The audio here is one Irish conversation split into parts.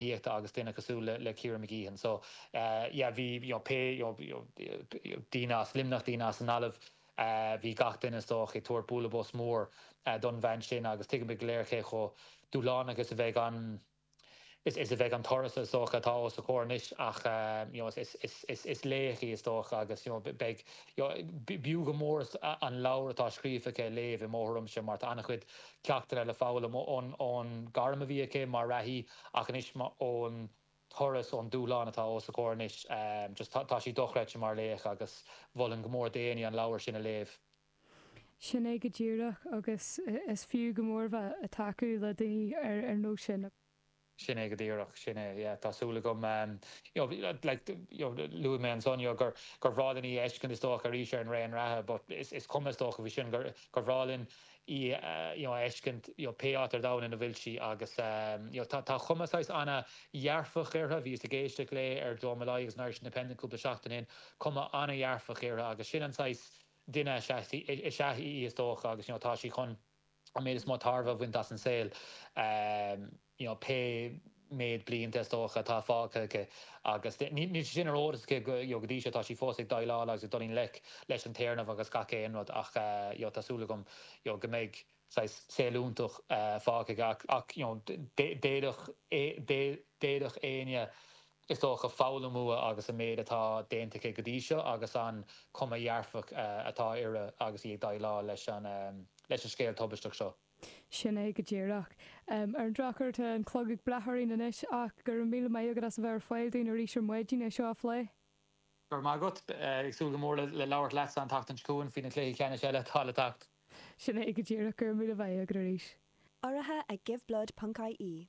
Aíochta agus duine cosúil le Ciara Mageean. So yeah bhí you know pé you know daoine as Luimneach, daoine as an Ghaillimh, bhí gach duine is dócha ag tabhairt bualadh bos mór don bhean sin agus tuigimid go léir cé chomh dúshlánach is a bheidh an is is a bheidh an turas is dócha atá os a comhair anois ach you know is is is is laoch í is dócha agus you know beidh you know b'fhiú go mór an leabhar atá scríofa aici a léamh i mo thuairimse mar tá an-chuid ceachtanna le foghlaim ón ngairm a bhí aici mar reathaí ach anois ón turas, ón dúshlán atá os a comhair anois. just tá sí dochreidte mar laoch agus mholfainn go mór d'éinne an leabhar sin a léamh. Sin é go díreach agus is fiú go mór bheith a' tacú le daoine ar nós sin. Sin é go díreach, sin é, yeah, tá súil agam, you know, like, you know, luaigh mé ansan, you know, gur bhreá linn í a fheiscint, is dócha, arís ar an raon reatha but is cuma, is dócha faoi sin, gur bhreá linn í, you know, a fheiscint, you know, pé áit ar domhan ina bhfuil sí agus, you know, tá cuma, saghas, ana-dhearfach uirthi, bhíos ag éisteacht léi ar Joe Molloy agus an Irish Independent cúpla seachtain ó shin, cuma ana-dhearfach uirthi agus sin an saghas duine is ea í, is dócha agus, you know, tá sí chun. an méid is mó tairbhe a bhaint as an saol, you know, pé méid blianta, is dócha, atá fágtha aici. Agus níl sé sin ar eolas aici, you know, go dtí seo. Tá sí fós ag déileáil agus ag dul i ngleic leis an téarnamh agus gach aon rud ach, you know, tá súil agam, you know, go mbeidh saghas saol fiúntach fágtha aici. Ach, you know, d'fhéadfadh éinne, is dócha, foghlaim uaithi agus an méid atá déanta aici go dtí seo agus an chuma dhearfach atá uirthi agus í ag déileáil leis an scéal tubaisteach seo. Sin é go díreach. Ar an drochuair tá an clog ag breith orainn anois ach go raibh míle maith agat as a bheith ar fáil dúinn arís ar maidin é seo a phlé. Go raibh maith agat. Ag súil go mór le labhairt leatsa an tseachtain seo chugainn faoi na cluichí ceannais eile atá le teacht. Sin é go díreach. Go raibh míle maith agat arís. Urraithe ag Giveblood ponc-IE.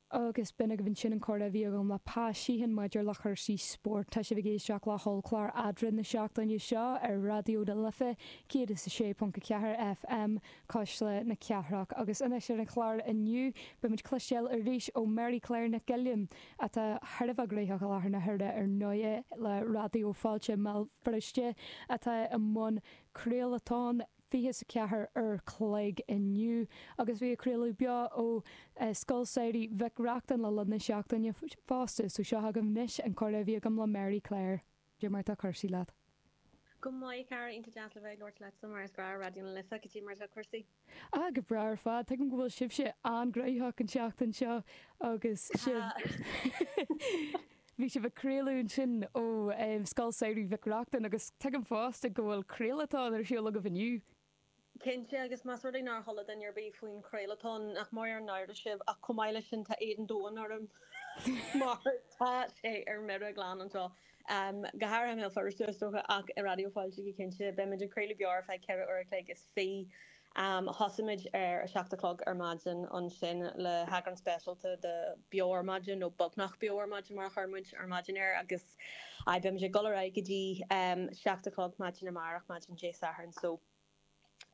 agus b'in agaibh ansin an comhrá a bhí agam le Pa Sheehan maidir le cúrsaí spóirt. Tá sibh ag éisteacht le hollchlár Adhradh na seachtaine seo ar Raidió na Life 106.4 FM, Cuisle na Cathrach. Agus anois ar an chlár inniu, beidh muid ag cloisteáil arís ó Mary Claire Nic Uilliam, atá thar a bheith gnóthach i láthair na huaire ar ndóigh, le Raidió Fáilte i mBéal Feirste, atá i mbun craolatóin. 24 uair an chloig inniu agus bhí ag craoladh beo ó Scoil Samhraidh Mhic Reachtain le linn na seachtaine fosta so seo agaibh anois an comhrá a bhí agam le Mary Claire. Cad é mar atá cúrsaí leat? Go maith a chara, iontach deas le bheith ag labhairt leatsa mar is gnáth Raidió na Life cad é mar atá cúrsaí? Ah go breá ar fad, tuigim go bhfuil sibhse an-ghnóthach an tseachtain seo agus sibh. Bhí sibh ag craoladh ansin ó Scoil Samhraidh Mhic Reachtain agus tuigim fosta go bhfuil craolatón ar siúl agaibh inniu. Cinnte, agus más rud é nár chuala duine ar bith faoin chraolatón, nach mór an náire sibh, ach chomh maith leis sin tá éad an domhain orm mar tá sé ar mire glan anseo, go háirithe i mBéal Feirste is dócha, ach i Raidió Fáilte go cinnte. Beimid ag craoladh beo ar feadh ceithre uair a chloig is fiche Am, Thosaímid ar a seacht a chlog ar maidin ansin le heagrán speisialta de Beo Ar Maidin, nó beagnach Beo Ar Maidin mar a chuir muid ar maidin air, agus aye, beimid ag dul ar aghaidh go dtí seacht a chlog maidin amárach, maidin Dé Sathairn. So,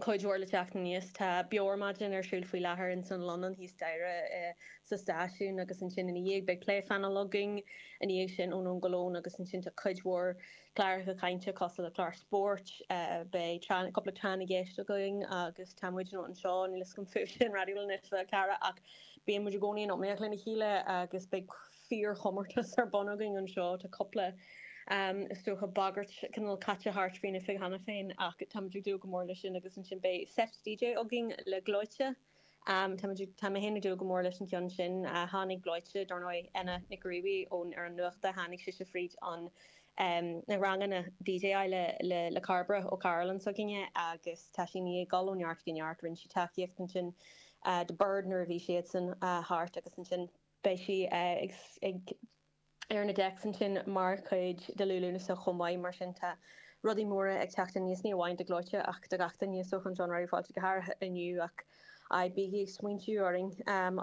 cuid mhór le teacht aníos. Tá Beo Ar Maidin ar siúl faoi láthair ins an Lonán thíos staighre sa stáisiún agus ansin ina dhiaidh beidh plé-phainéal againn, ina dhiaidh sin Ón Lón Go Lón agus ansin tá cuid mhór cláracha cainte cosúil le clár spóirt, beidh tráth, cúpla tráth na gceist againn agus tá muidne anseo, níl fhios agam fúibhse in Raidió na Life a Chara ach bíonn muid i gcónaí in iomaíocht lena chéile agus beidh fíor chomórtas ar bun againn anseo, tá cúpla is dócha bagairt cineál caite thart faoin oifig cheana féin ach tá muid ag dúil go mór le sin agus ansin beidh seit DJ againn le Gleoite. Tá mé féin ag dúil go mór leis an chionn sin. Tháinig Gleoite, dar ndóigh, Anna Nic Ruaidhrí ón ar an nuachta, tháinig sise fríd an na ranganna DJála le Cairbre Ó Cairealláin s'againne agus tá sí i ndiaidh dul ó neart go neart. Rinne sí tacaíocht ansin do Bird nuair a bhí siadsan thart agus ansin beidh sí ag ar na deics ansin mar chuid de Liú Lúnasa chomh maith. Mar sin, tá rudaí móra ag teacht aníos, ní amháin do Ghleoite ach do gach duine is dócha, anseo in Raidió Fáilte go háirithe inniu ach aye bígí ag smaointiú orainn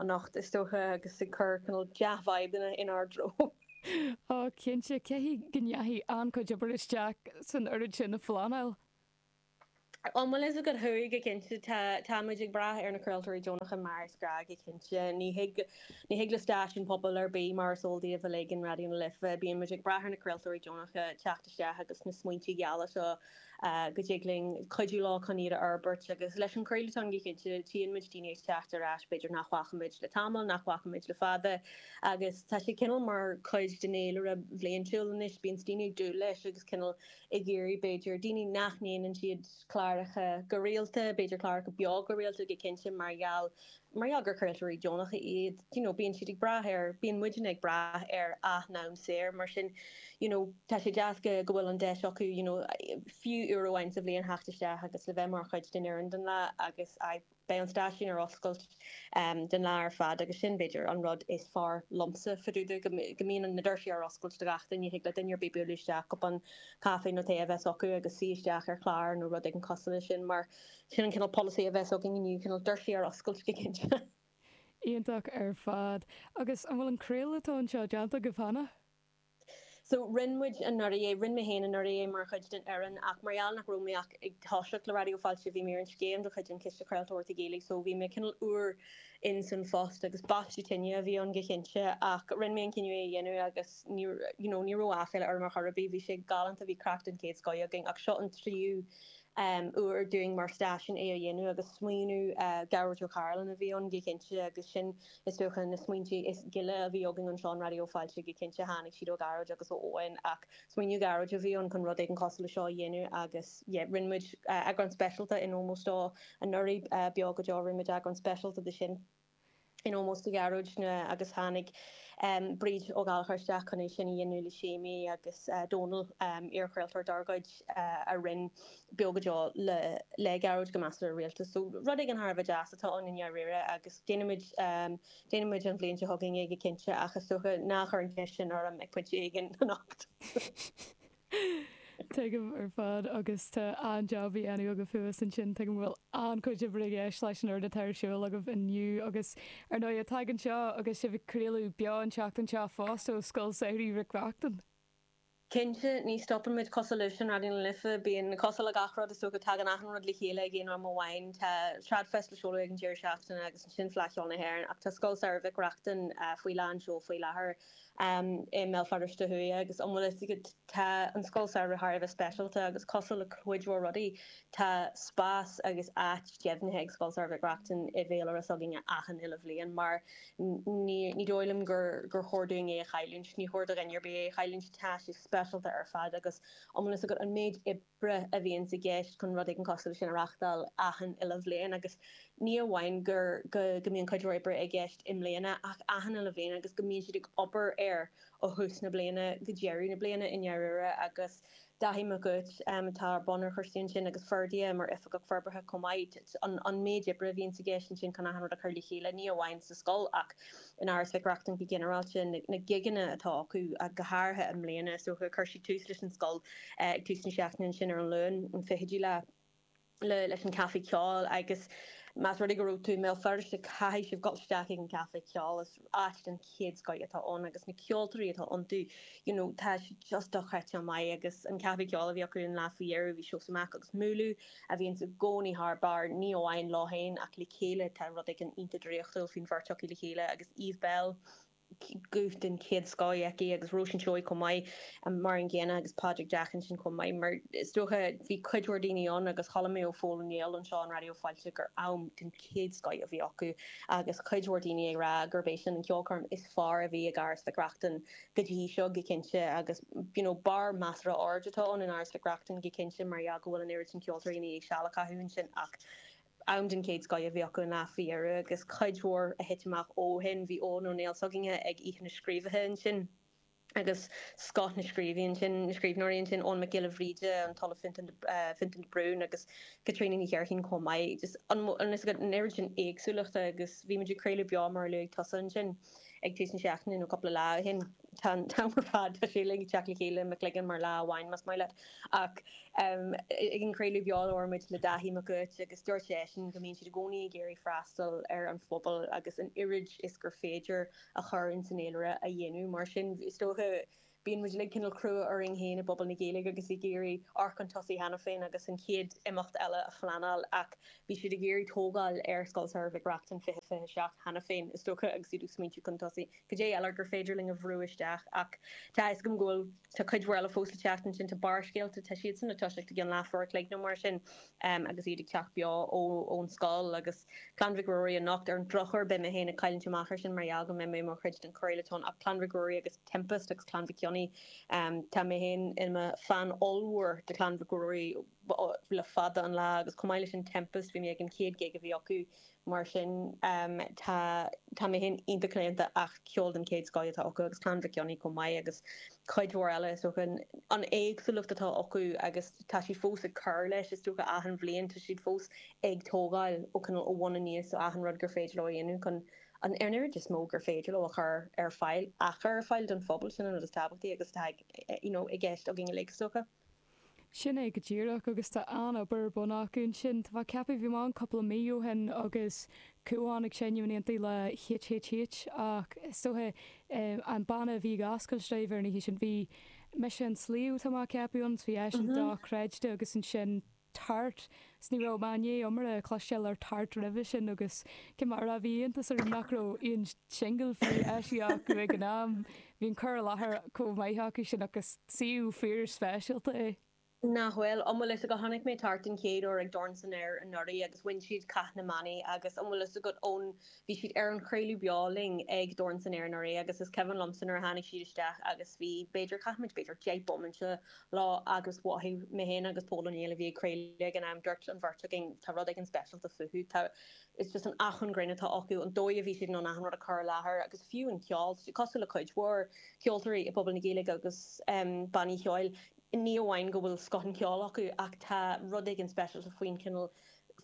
anocht is dócha agus ag cur cineál dea-vibes in ár dtreo. Á, cinnte, caithfidh go ndeachaigh an-chuid obair isteach san oiread sin a phleanáil. Ó maise gad chuaigh cinnte táimid ag brath ar na craoltóirí deonacha mar is gnách go cinnte. Ní thig le stáisiún pobail ar bith, mar is eol daoibh uilig in Raidió na Life, bíonn muid ag brath ar na craoltóirí deonacha teacht isteach agus na smaointe geala seo go dtig linn cuidiú leo chun iad a fhorbairt agus leis an chraolatón go cinnte tchíonn muid daoine ag teacht ar ais b'fhéidir nach bhfacaimid le tamall, nach bhfacaimid le fada agus tá sé cineál mar chuid den fhéilire bhliaintiúil anois, bíonns daoine ag dúil leis agus cineál ag iarraidh, b'fhéidir, daoine nach ndéanann siad cláracha go rialta, b'fhéidir cláracha beo go rialta go cinnte mar gheall, mar gheall gur craoltóirí deonacha iad, you know bíonn siad ag brath ar, bíonn muidne ag brath ar a n-am saor, mar sin you know tá sé deas go go bhfuil an deis acu you know fiú uair amháin sa bhliain theacht isteach agus le bheith mar chuid den fhoireann don lá agus aye. Beidh an stáisiún ar oscailt don lá ar fad agus sin, b'fhéidir, an rud is fearr liomsa, fá dtaobh de go mbíonn na doirse ar oscailt do gach duine, thig le duine ar bith bualadh isteach, cupán caife nó tae a bheith acu agus suí isteach ar chlár nó rud éigin cosúil leis sin mar sin an cineál polasaí a bheas againne inniu, cineál doirse ar oscailt go cinnte. Iontach ar fad. Agus an bhfuil an craoladh atá anseo déanta agaibh cheana? So, rinn muid anuraidh é, rinn mé féin anuraidh é mar chuid den fhoireann ach mar gheall nach raibh mé ach ag toiseacht le Raidió Fáilte bhí mé ar an scéim de chuid an Chiste Chraoltóireachta Gaeilge so bhí mé cineál úr insan phost agus baisteadh tine a bhí ann go cinnte ach rinn mé an cinneadh é a dhéanamh agus ní you know ní raibh aiféala orm ar chor ar bith bhí sé galánta bhí craic den chéad scoth againn ach seo an tríú um uair dúinn mar stáisiún é a dhéanamh agus smaoineamh uh Gearóid Ó Cairealláin a bhí ann go cinnte agus sin Is dócha na smaointe is gile a bhí againn anseo in Raidió Fáilte go cinnte tháinig siad ó Ghearóid agus ó Eoin ach smaoineamh Ghearóid a bhí ann chun rud éigin cosúil le seo a dhéanamh agus yeah rinne muid eagrán speisialta in ómós dó anuraidh, Beo go Deo, rinne muid eagrán speisialta de sin in ómós do Ghearóid agus tháinig Bríd Ó Gallchóir isteach chun é sin a dhéanamh le Séimí agus Dónall, iarchraoltóir dár gcuid, a rinne. beo go deo le Gearóid go meastar rialta. So rud éigin thar a bheith deas atá ann i ndáiríre agus déanfaimid, déanfaimid an bhliain seo chugainn é go cinnte ach is dócha ná cuir an cheist sin orm ag pointe éigin anocht. Tuigim ar fad agus tá an-jab a dhéanamh agaibh thuas ansin, tuigim go bhfuil an-chuid oibre i gceist leis an oiread atá ar siúl agaibh inniu agus ar ndóigh tagann seo agus sibh ag craoladh beo an tseachtain seo fosta ó Scoil Samhraidh Mhic Reachtain. Cinnte, ní stopann muid cosúil libhse in Raidió na Life, bíonn cosúil le gach rud, is dócha, tagann achan rud le chéile ag aon am amháin. Tá TradFest le seoladh ag an deireadh seachtaine agus ansin Fleadh Cheoil na hÉireann ach tá Scoil Samhraidh Mhic Reachtain faoi lán seol faoi láthair i mBéal Feirste Thuaidh agus an bhfuil fhios agat, tá an Scoil Samhraidh thar a bheith speisialta agus cosúil le cuid mhór rudaí, tá spás agus áit deimhnithe ag Scoil Samhraidh Mhic Reachtain i bhféilire s'againne achan uile bhliain mar. Ní dóigh liom gur chóir dúinn é a chailliúint. Ní chóir do dhuine ar bith é a chailliúint. Tá sé speisialta ar fad agus iomlán ciall go an méid oibre a bhíonns i gceist chun rud éigin cosúil leis sin a reachtáil achan uile bhliain agus ní amháin go mbíonn cuid mhór oibre i gceist i mbliana ach achan uile bhliain agus go mbíonn siad ag obair air ó thús na bliana go deireadh na bliana i ndáiríre agus Daithí Mac Uait, atá i mbun chúrsaí ansin, agus Ferdia mar Oifigeach Forbartha chomh maith. An méid oibre a bhíonns i gceist ansin chun achan rud a chur le chéile, ní amháin sa scoil ach in Áras Mhic Reachtain go ginearálta, na gigeanna atá acu, go háirithe i mbliana is dócha, chuir siad tús leis an scoil ag tús na seachtaine ansin ar an Luan, an fichiú lá. le leis an Caife Ceoil agus más rud é go bhfuil tú i mBéal Feirste caithfidh sibh dul isteach ag an gCaife Ceoil, is áit den chéad scoth atá ann agus na ceoltóirí atá ann you know tá siad just dochreidte maith agus an Caife Ceoil a bhí acu an lá faoi dheireadh bhí Seosamh Mac agus MÚLÚ a bhíonns i gcónaí thar barr ní amháin leo féin ach le chéile tá rud éigin iontach draíochtúil faoin bheirt acu le chéile agus Eve Belle guth den chéad scoth aici agus Róisín Seoighe chomh maith mar an gcéanna agus Pádraig Jack ansin chomh maith mar sin is dócha bhí cuid mhór daoine ann agus chuala mé ó Phól Mag Aoidh anseo in Raidió Fáilte gur am den chéad scoth a bhí acu agus cuid mhór daoine ag rá gurb é sin an ceolchoirm is fearr a bhí ag Áras Mhic Reachtain go dtí seo go cinnte agus you know barr measartha ard atá ann in Áras Mhic Reachtain go cinnte mar gheall go bhfuil an oiread sin ceoltóirí ina dhiaidh seal a chaitheamh ansin ach am den chéad scoth a bhí acu i ndáiríre agus cuid mhór a thit amach ó shin. Bhí Eoghan Ó Néill s'againne ag Oíche na Scríobaithe ansin agus scoth na scríbhn ansin, na scríbhneoirí ansin, Eoghan Mac Giolla Bhríde, an tOllamh Fionntán de, Fionntán de Brún agus Caitríona Ní Chléirchín chomh maith. Just an, an fhios agat, an oiread sin éagsúlachta agus bhí muid ag craoladh beo mar a luaigh tusa ansin ag tús na seachtaine nó cúpla lá ó shin. Tá an t-am ar fad, tá sé uilig ag teacht le chéile i mo chloigeann mar lá amháin más maith leat. Ach ag an gcraoladh beo labhair muid le Daithí Mac Uait agus dúirt seisean go mbíonn siad i gcónaí ag iarraidh freastal ar an phobal agus an oiread is gur féidir a chur insan eolaire a dhéanamh. Mar sin, is dócha, bíonn muid uilig cineál crua orainn féin i bpobal na Gaeilge agus ag iarraidh amharc chun tosaigh cheana féin agus an chéad imeacht eile a phleanáil ach bhí siad ag iarraidh tógáil ar Scoil Samhraidh Mhic Reachtain 2027 cheana féin, is dócha, agus iad ag smaointiú chun tosaigh. Cad é eile gur féidir linn a bhrú isteach? Ach tá a fhios agam go bhfuil, tá cuid mhór eile fós le teacht ansin, tá Barrscéalta, tá siadsan le toiseacht i gceann leathuair an chloig nó mar sin agus iad ag teacht beo ón scoil, agus Clann Mhic Ruairí anocht. Ar an drochuair beidh mé féin ag cailliúint amach ar sin mar gheall go mbeidh mé i mo chuid den Chraolatón ach Clann Mhic Ruairí agus Tempest agus Clann Mhic Cionnaith, tá mé féin i mo fan ollmhór de Chlann Mhic Ruairí le fada an lá agus chomh maith leis sin Tempest, bhí mé ag an chéad ghig a bhí acu. Mar sin, tá tá mé féin iontach claonta ach ceol den chéad scoth atá acu agus Clann Mhic Cionnaith chomh maith agus cuid mhór eile, is dócha. An éagsúlacht atá acu agus tá siad fós ag cur leis, is dócha, achan bhliain, tá siad fós ag tógáil ó cineál ó bhun aníos, so achan rud gur féidir leo a dhéanamh chun an an oiread is mó gur féidir leo a chur ar fáil, a chur ar fáil don phobal, sin an rud is tábhachtaí agus atá you know i gceist againn uilig, is dócha. Sin é go díreach, agus tá an-obair ar bun acu ansin. Tá mé ag ceapadh, bhí mé ann cúpla mí ó shin agus chuaigh mé ag seinm in éindí le HHH ach is dócha an banna a bhí ag oscailt dóibh ar an oíche sin, bhí Mise an Sliabh, tá mé ag ceapadh ann, so bhí eisean dochreidte agus ansin tart, 's ní raibh mé i ndiaidh iomrá a chloisteáil ar Tart roimhe sin agus cé mar a bhí iontas orm nach raibh aon singil fiú eisithe acu ag an am, bhí an cur i láthair chomh maith acu sin ach is suíomh fíor speisialta é. Nach bhfuil? An bhfuil fhios agat tháinig mé Tart den chéad uair ag Dorn san Aer anuraidh agus bhain siad Cath na mBannaí agus an bhfuil fhios agat ón bhí siad ar an chraoladh beo linn ag Dorn san Aer anuraidh agus is cuimhin liomsa nuair a tháinig siad isteach agus bhí b'fhéidir chaith muid b'fhéidir deich bomaite leo agus mhothaigh mé féin agus Pól Ó Néill a bhí ag craoladh ag an am, dúirt an bheirt againn, tá rud éigin speisialta fúthu, tá. is just an acmhainn grinn atá acu, an dóigh a bhí siad in ann achan rud a chur i láthair agus fiú an ceol, tá siad cosúil le cuid mhór ceoltóirí i bpobal na Gaeilge agus bannaí cheoil, ní amháin go bhfuil scoth an cheoil acu ach tá rud éigin speisialta faoin chineál,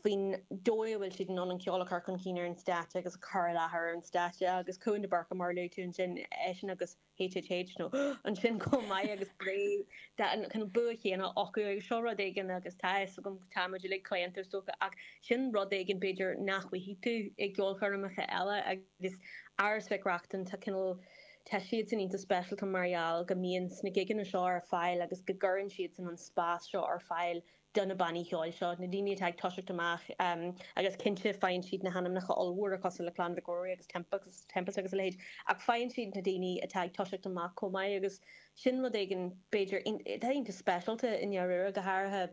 faoin dóigh a bhfuil siad in ann an ceol a chur chun cinn ar an stáitse agus a chur i láthair ar an stáitse agus Cuan de Búrca mar a luaigh tú ansin, eisean agus. HHH nó ansin chomh maith agus brei tá an cineál bua chéanna acu agus seo rud éigin agus tá a fhios agam tá muid uilig claonta is dócha ach sin rud éigin b'fhéidir nach bhfaighidh tú i gceolchoirmeacha eile agus Áras Mhic Reachtain tá cineál tá siadsan iontach speisialta mar gheall go mbíonns na gigeanna seo ar fáil agus go gcuireann siadsan an spás seo ar fáil do na bannaí cheoil seo, na daoine atá ag toiseacht amach, agus cinnte faigheann siad na hainmneacha ollmhóra cosúil le Clann Mhic Ruairí agus Tempest agus a leithéid, ach faigheann siad na daoine atá ag toiseacht amach chomh maith agus sin rud éigin, b'fhéidir, atá iontach speisialta i ndáiríre, go háirithe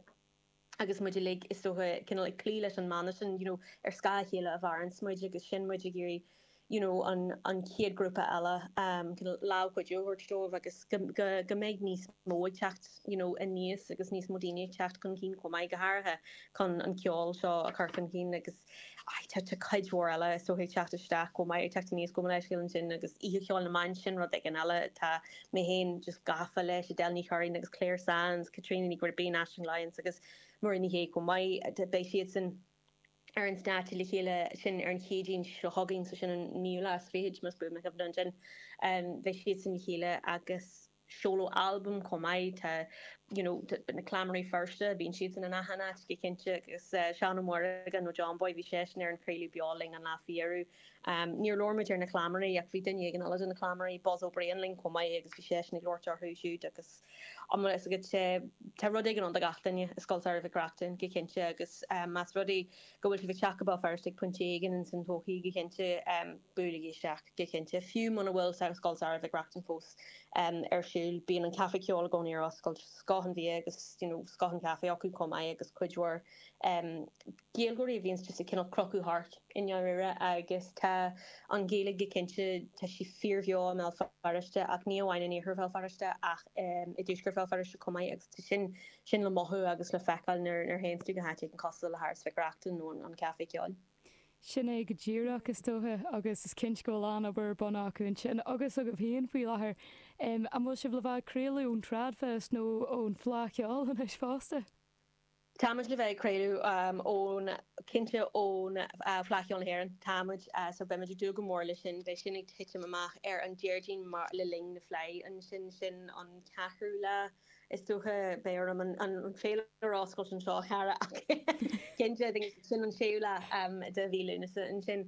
agus muid uilig, is dócha, cineál ag cloí leis an mana sin, you know, ar scáth a chéile a mhaireanns muid agus sin muid ag iarraidh you know an chéad ghrúpa eile lámh chuidithe a thabhairt dóibh agus go mbeidh níos mó ag teacht you know aníos agus níos mó daoine ag teacht chun cinn chomh maith go háirithe chun an ceol seo a chur chun cinn agus tá tá cuid mhór eile is dócha ag teacht isteach chomh maith ag teacht aníos chomh maith leis sin agus Oíche Cheoil na mBan sin rud éigin eile tá mé féin just gafa leis Edel Ní Churraoin agus Clare Sands, Caitríona Ní Ghribín, Aisling Lyons agus Muireann Ní Shé chomh maith beidh siadsan ar an stáitse le chéile sin ar an Chéadaoin seo chugainn, so sin an 9ú lá is fichid más buan mo chuimhne ansin beidh siadsan le chéile agus seoladh albaim chomh maith, tá you know na Cleamairí Feirste bíonn siadsan in achan áit go cinnte agus Seán Ó Muireagáin nó John Boy bhí seisean ar an chraoladh beo linn an lá faoi dheireadh. Níor labhair muid ar na cleamairí ach bhí duine éigin eile de na cleamairí, Buzz Ó Briain, linn chomh maith agus bhí seisean ag labhairt orthu siúd agus an bhfuil a fhios agat, tá rud éigin ann do gach duine i Scoil Samhraidh Mhic Reachtain, go cinnte, agus más rud é go bhfuil sibh ag teacht go Béal Feirste ag pointe éigin ins an todhchaí, go cinnte, buailigí isteach, go cinnte. Fiú muna bhfuil Scoil Samhraidh Mhic Reachtain fós ar siúl, bíonn an Caife Ceoil i gcónaí ar oscailt, scoth an bhia agus, you know, scoth an chaife acu chomh maith agus cuid mhór. Gaeilgeoirí a bhíonns just ag cineál crochadh thart i ndáiríre agus tá an Ghaeilge go cinnte, tá sí fíorbheo i mBéal Feirste ach ní amháin in iarthar Bhéal Feirste ach i dtuaisceart Bhéal Feirste chomh maith agus tá sin, sin le mothú agus le feiceáil nuair, nuair a théanns tú go háit éigin cosúil le hÁras Mhic Reachtain nó an, an Caife Ceoil. Sin é go díreach is dóiche agus is cinnte go bhfuil an-obair ar bun acu ansin agus agaibh féin faoi láthair. An bhfuil sibh le bheith ag craoladh ón Tradfest nó ón Fhleadh Cheoil anois fosta? Táimid le bheith ag craoladh ón, cinnte ón Fleadh Cheoil na hÉireann, táimid, so beimid ag dúil go mór leis sin, beidh sin ag titim amach ar an Déardaoin mar, le linn na Fleidhe ansin, sin an ceathrú lá is dócha, beidh orm an an féilire a oscailt anseo a chara ach cinnte, I think sin an séú lá de mhí Lúnasa ansin,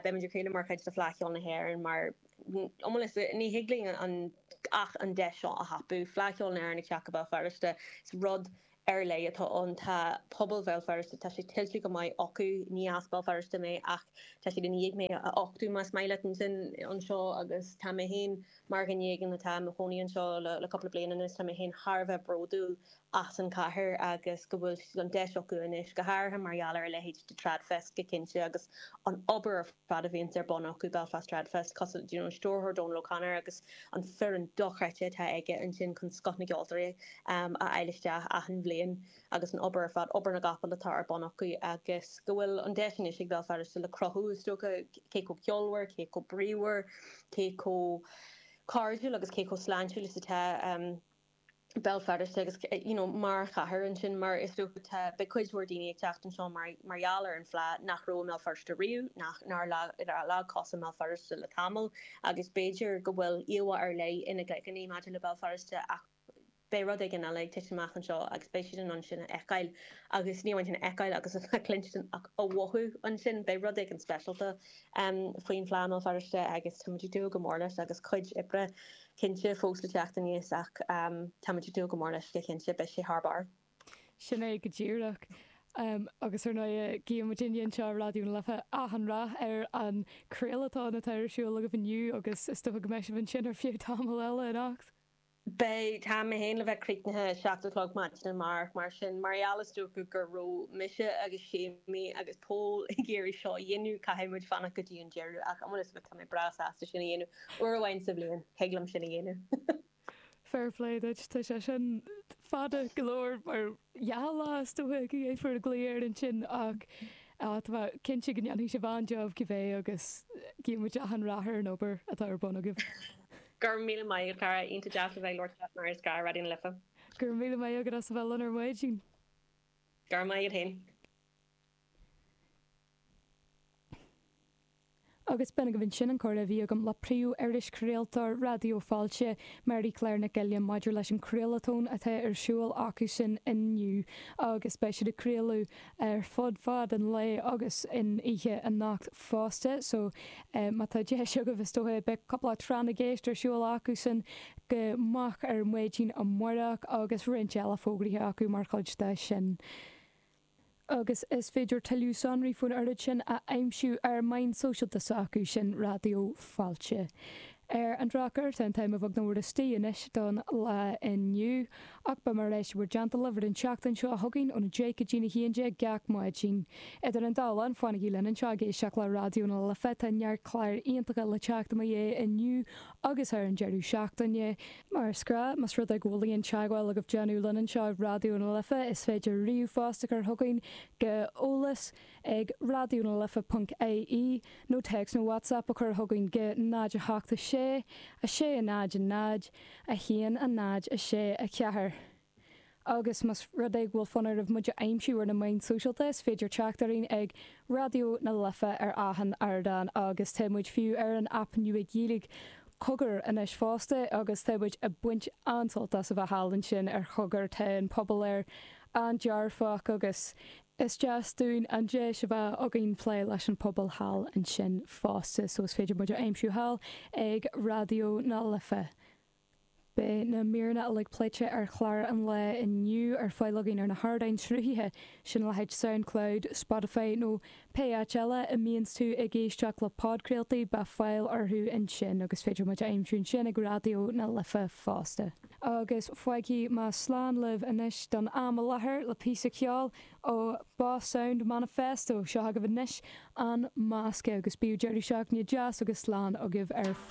beimid ag craoladh mar chuid de Fleadh Cheoil na hÉireann mar, iomaí le, ní thig linn ach an deis seo a thapú, Fleadh Cheoil na hÉireann ag teacht go Béal Feirste, is rud. ar leith atá ann. Tá pobal Bhéal Feirste, tá sé tuillte go maith acu. Ní as Béal Feirste mé ach tá siad i ndiaidh mé a uchtú, más maith leat, ansin anseo agus tá mé féin mar dhuine éigin atá i mo chónaí anseo le cúpla bliain anois, tá mé féin thar a bheith bródúil as an chathair agus go bhfuil an deis acu anois, go háirithe mar gheall ar a leithéid de Tradfest go cinnte agus an obair a fad a bhíonns ar bun acu Belfast Trad Fest cosúil le you know Stiúrthóir Dónal O'Connor agus an foireann dochreidte atá aige ansin chun scoth na gceoltóirí ehm a fháil isteach achan bhliain agus an obair ar fad obair na gcapall atá ar bun acu agus go bhfuil an deis anois ag Béal Feirste le cruthú is dócha cé chomh ceolmhar cé chomh bríomhar cé chomh cairdiúil agus cé chomh sláintiúil is atá ehm Béal Feirste agus you know mar chathair ansin mar is dócha tá beidh cuid mhór daoine ag teacht anseo mar mar gheall ar an fleadh nach raibh i mBéal Feirste riamh nach nár leag leag cos i mBéal Feirste le tamall agus b'fhéidir go bhfuil íomhá ar leith ina gcloigeann maidir le Béal Feirste ach beidh rud éigin eile ag titim amach anseo agus beidh siad in ann sin a fheiceáil agus ní amháin sin a fheiceáil agus a chluinstin ach a mhothú ansin beidh rud éigin speisialta um, faoin Fhleadh i mBéal Feirste agus táimid ag dúil go mór leis agus cuid oibre cinnte, fós le teacht aníos ach táimid ag dúil go mór leis, go cinnte, beidh sé thar barr. Sin é go díreach. Agus ar ndóighe, guímid uilig anseo i Raidió na Life achan rath ar an craoltón atá ar siúl agaibh inniu agus is dócha go mbeidh sibh ansin ar feadh tamaill eile anocht. Beidh, tá mé féin le bheith críochnaithe seacht a chlog ar maidin amárach mar sin, mar gheall is dócha gur raibh mise agus Séimí agus Pól ag iarraidh seo a dhéanamh, caithfidh muid fanacht go dtí an deireadh ach amuigh as sin tá mé breá sásta sin a dhéanamh. Uair amháin sa bhliain, thig liom sin a dhéanamh. Fair play duit, tá sé sin fada go leor mar sheacht lá is dócha go dtabharfar an glao air ansin ach tá mé cinnte go ndéanfaidh sibh an-jab cibé agus guíonn muid achan rath ar an obair atá ar bun agaibh. Go raibh míle maith agat, cara, iontach deas a bheith ag labhairt leat mar is gnáth Raidió na Life. Go raibh míle maith agat as a bheith linn ar maidin. Go raibh maith agat féin. agus b'in agaibh ansin an comhrá a bhí agam le príomh-irischraoltóir Raidió Fáilte, Máirí Clár Nic Uilliam, maidir leis an Craolatón atá ar siúl acusan inniu agus beidh siad ag craoladh ar fud fhad an lae agus in oíche anocht fosta, so má tá deis agaibh, is dócha, beidh cúpla Tráth na gCeist ar siúl acusan go moch ar maidin amárach agus roinnt eile fógraithe acu mar chuid de sin. agus is féidir tuilleadh sonraí faoin oiread sin a aimsiú ar na meáin sóisialta s'acusan, Raidió Fáilte. Ar an drochuair, tá an t-am againn nach mór istigh anois don lá inniu, ach beidh mé ar ais i bhur dteannta libh ar an tseachtain seo chugainn ón 10 go dtí a 11 gach maidin. Idir an dá linn, fanaigí linn anseo ag éisteacht le Raidió na Life, tá neart clár iontacha le teacht i mo dhiaidh inniu, agus ar an deireadh seachtaine. Mar is gnáth, más rud é go bhfuil aon teagmháil agaibh déanamh linn anseo ag Raidió na Life, is féidir ríomhphost a chur chugainn go eolas ag raidionalife.ie nó téacs nó WhatsApp a chur chugainn go 086 600 1 0 6 4. agus más rud é go bhfuil fonn oraibh muid a aimsiú ar na meáin sóisialta is féidir teacht orainn ag Raidió na Life ar achan ardán agus tá muid fiú ar an aip nua Gaeilge Cogar anois fosta agus tá muid ag baint an-sult as a bheith thall ansin ar Chogar tá an pobal air an-dearfach agus is deas dúinn an deis a bheith againn plé leis an pobal thall ansin fosta so is féidir muid a aimsiú thall ag Raidió na Life. Beidh na míreanna uilig pléite ar chlár an lae inniu ar fáil againn ar na hardáin sruthaithe sin leithéid Soundcloud, Spotify nó pé áit eile a mbíonns tú ag éisteacht le podchraoltaí, beidh fáil orthu ansin agus féidir muid a aimsiú ansin ag Raidió na Life fosta. Agus fágfaidh mé slán libh anois don am i láthair le píosa ceoil ó Boss Sound Manifesto. Seo agaibh anois An Masque agus bíodh deireadh seachtaine deas agus slán agaibh ar.